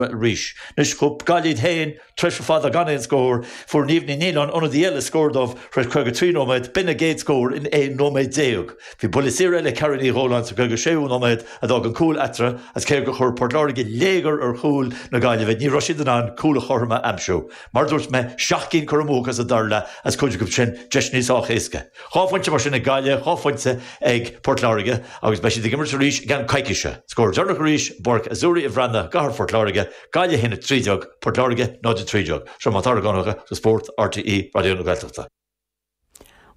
Bhuel arís. Anois chuaigh Gaillimh iad féin, tréimhse fada gan aon scór, fuair Niamh Ní Nialláin, ionadaí eile, scór dóibh tar éis 53 nóiméad, b'in a gcéad scór in 11 nóiméad. Bhí buille saor eile ag Carrie Ní Dhóláin sa 56ú nóiméad a d'fhág an cúl eatarthu agus cé gur chuir Port Láirge léigear ar chúl na Gaillimhe ní raibh siad in ann cúl an chothroim a aimsiú. Mar a dúirt mé, seacht gcinn curtha amú acu sa dara leath agus cuid acu sin deiseannaí sách éasca. Dhá phointe mar sin ag Gaillimh, dhá phointe ag Port Láirge agus beidh siad ag imirt arís i gceann coicíse. Scór deireanach arís, i bPáirc Azzurri an Bhreathnaigh i gCathair Phort Láirge, Gaillimh 1, 13, Port Láirge 0, 13. Seo Mac Dara Mac Donncha do Spórt, RTÉ Raidió na Gaeltachta.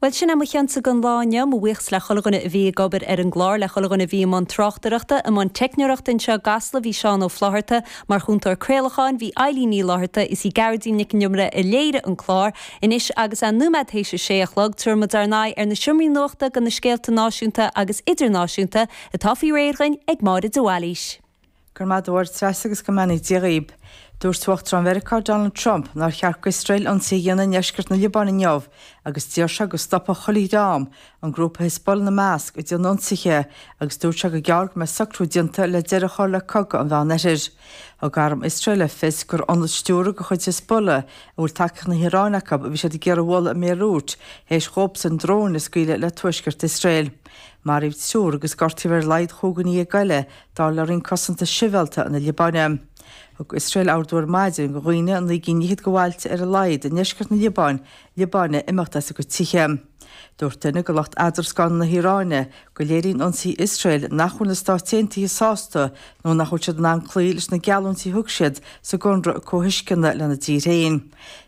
Bhuel sin é mo cheannsa gon lá inniu, mo bhuíochas le chuile dhuine a bhí ag obair ar an gclár, le chuile dhuine a bhí i mbun tráchtaireachta, i mbun teicneoireachta anseo i gCasla bhí Seán Ó Flaithearta mar Chúntóir Craolacháin, bhí Eileen Ní Fhlatharta is í Gearóidín Nic An Iomaire a léirigh an clár, Anois agus é nóiméad tar éis a sé a chlog, tabharfaidh muid ár n-aghaidh ar na seomraí nuachta go na scéalta náisiúnta agus idirnáisiúnta atá faoi réir againn ag Máire de Bhailís. Go raibh maith agat, Treasa, agus go mbeannaí Dia dhaoib. Dúirt Uachtarán Mheiriceá Donald Trump nár cheart go Iosrael ionsaí a dhéanamh i ndeisceart na Liobáine inniu agus d'iarr sé go stopfadh chuile dhream an grúpa Hizbollah ina measc, ag déanamh ionsaithe agus dúirt sé gur gearr go mbeadh socrú déanta le deireadh a chur le cogadh an Mheánoirthir. Thug arm Iosrael le fios gur ionad stiúrtha de chuid Hizbollah, a bhfuil tacaíocht na hIaráine acu, a bhí siad ag iarraidh a bhualadh i mBéiriút théis dhóibsan dróin a scaoileadh le Tuaisceart Iosrael. Maraíodh triúr agus gortaíodh ar a laghad chúig dhuine dhéag eile, dar le Roinn Cosanta Sibhialta na Liobáine. Thug Iosrael ordú ar maidin go dhaoine i naoi gcinn fhichead go bhailte ar a laghad, i ndeisceart na Liobáine, Liobáine imeacht as a gcuid tithe. Dúirt duine de lucht eadarscána na hIaráine go léiríonn ionsaí Iosrael nach bhfuil na Stáit Aontaithe sásta nó nach bhfuil siad in ann cloí leis na geallúintí a thug siad sa gconradh comhthuisceana lena dtír féin.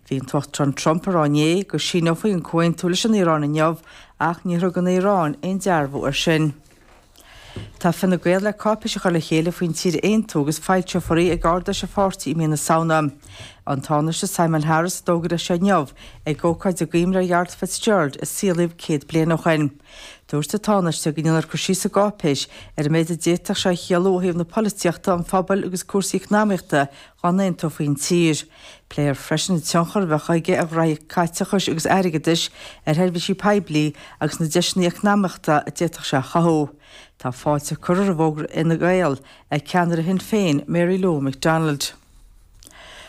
Bhí an tUachtarán Trump ag rá inné go síneofaí an comhaontú leis an Iaráin inniu ach níor thug an Iaráin aon dearbhú air sin. Tá Fine Gael le cáipéis a chur le chéile faoin tír a aontú agus foilseofar í ag Ard-Fheis an pháirtí i mí na Samhna. An Tánaiste Simon Harris a d'fhógair é seo inniu ag ócáid i gcuimhne ar Gharret FitzGerald a saolaíodh céad bliain ó shin. Dúirt an Tánaiste go ndéanfar cur síos sa gcáipéis ar an méid a d'fhéadfadh sé a chiallú ó thaobh na polaitíochta, an phobail agus cúrsaí eacnamaíochta dá n-aontófaí an tír. Pléifear freisin an tionchar a bheadh aige ar ghnóthaí caiteachais agus airgeadais ar sheirbhísí poiblí agus na deiseanna eacnamaíochta a d'fhéadfadh sé a chothú. Tá fáilte curtha roimh fhógra Fhine Gael ag ceannaire Shinn Féin, Mary Lou McDonald.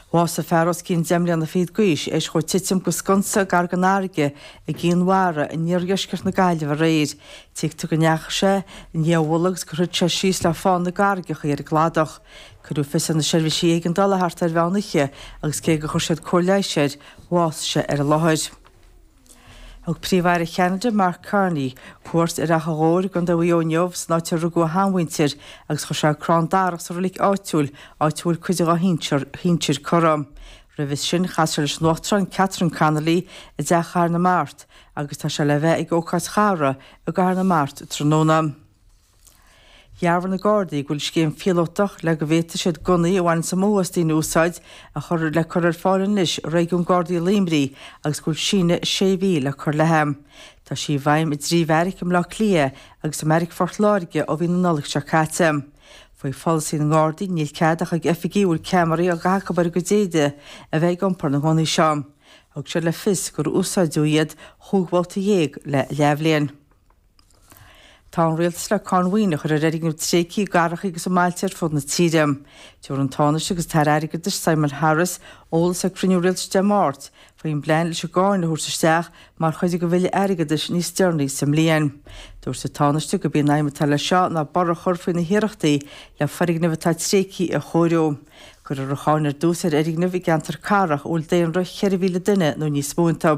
Bhásaigh fear os cionn deich mbliana fichead d'aois théis dhó titim go sconsa gar gon fharraige i gCinn Mhara in iardheisceart na Gaillimhe aréir. Tuigtear go ndeachaigh sé i ndiaidh a mhullaigh agus gur thit sé síos le fán na gcarraigeacha ar an gcladach. Cuireadh fios ar na seirbhísí éigeandála thart ar mheán oíche agus cé gur chuir siad cóir leighis air, bhásaigh sé ar an láthair. Thug Príomh-Aire Cheanada, Mark Carney, cuairt ar Achadh Ghobhair i gContae Mhaigh Eo inniu, an áit ar rugadh a sheanmhuintir, agus chuir sé crann darach sa reilig áitiúil, áit a bhfuil cuid dá shinsir curtha. Roimhe sin, chas sé leis an Uachtarán Catherine Connolly i dTeach Chathair na Mart agus tá sé le bheith ag ócáid chathartha i gCathair na Mart tráthnóna. Dhearbhaigh na Gardaí go bhfuil scéim phíolótach le go bhféadfaidh siad gunnaí a bhaineann an mothú as daoine a úsáid le cur ar fáil anois i Réigiún Gardaí Luimnigh agus go bhfuil síneadh sé mhí le cur léi. Tá sí i bhfeidhm i dtrí bheairic i mBleá Cliath agus i mBeairic Phort Láirge ó mhí na Nollag seo caite. Faoi pholasaí na nGardaí níl cead ach ag oifigigh a bhfuil ceamaraí á gcaitheamh acu ar a gcuid éide a bheith ag iompar na ngunnaí seo. Thug siad le fios gur úsáideadh iad chúig bhabhta dhéag le leathbhliain. Tá an Rialtas le cáin mhaoine a chur ar fhoirgnimh tréigthe i gcathracha agus i mbailte ar fud na tíre. Tabharfaidh an Tánaiste agus an tAire Airgeadais, Simon Harris, eolas ag cruinniú Rialtais Dé Máirt faoin bplean leis an gcáin a thabhairt isteach mar chuid den Bhille Airgeadais níos deireanaí sa mbliain. Dúirt an Tánaiste gurb í an aidhm atá leis seo ná borradh a chur faoi na hiarrachtaí le foirgnimh atá tréigthe a chóiriú. Cuirfear an cháin ar dtús ar fhoirgnimh i gceantair cathrach a bhfuil daonra 4,000 duine nó níos mó iontu.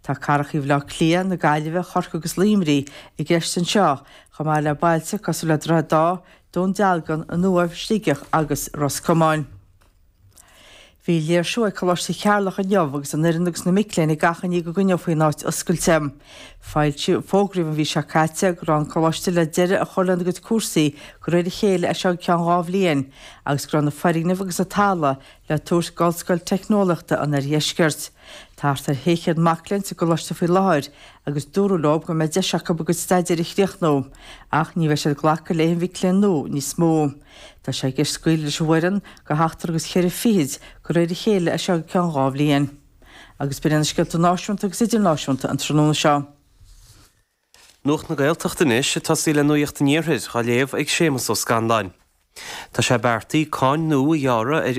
Tá cathracha Bhaile Átha Cliath, na Gaillimhe, Chorcaí agus Luimnigh i gceist anseo, chomh maith le bailte cosúil le Droichead Átha, Dún Dealgan, An Uaimh, Sligeach agus Ros Comáin. Bhí léirsiú ag Coláiste Cheatharlach inniu agus an fhoireann agus na mic léinn ag achainí go gcoinneofaí an áit oscailte. Fógraíodh an mhí seo caite go raibh an Coláiste le deireadh a chur lena gcuid cúrsaí de réir a chéile as seo go ceann dhá bhliain agus go raibh na foirgnimh agus an talamh le tabhairt d'Ollscoil Teicneolaíochta an Oirdheiscirt. Tá thart ar shé chéad mac léinn sa gcoláiste faoi láthair agus dúradh leo go mbeidh deis acu a gcuid staidéir a chríochnú ach ní bheidh siad ag glacadh le haon mhic léinn nua níos mó. Tá sé i gceist scaoileadh leis an bhfoireann de sheachtar agus ceithre fichid de réir a chéile as seo go ceann dhá bhliain. Agus b'in iad na scéalta náisiúnta agus idirnáisiúnta an tráthnóna seo. Nuacht na Gaeltachta anois ag tosaí le Nuacht an Iarthair á léamh ag Séamus Ó Scanláin. Tá sé beartaí cáin nua a ghearradh ar.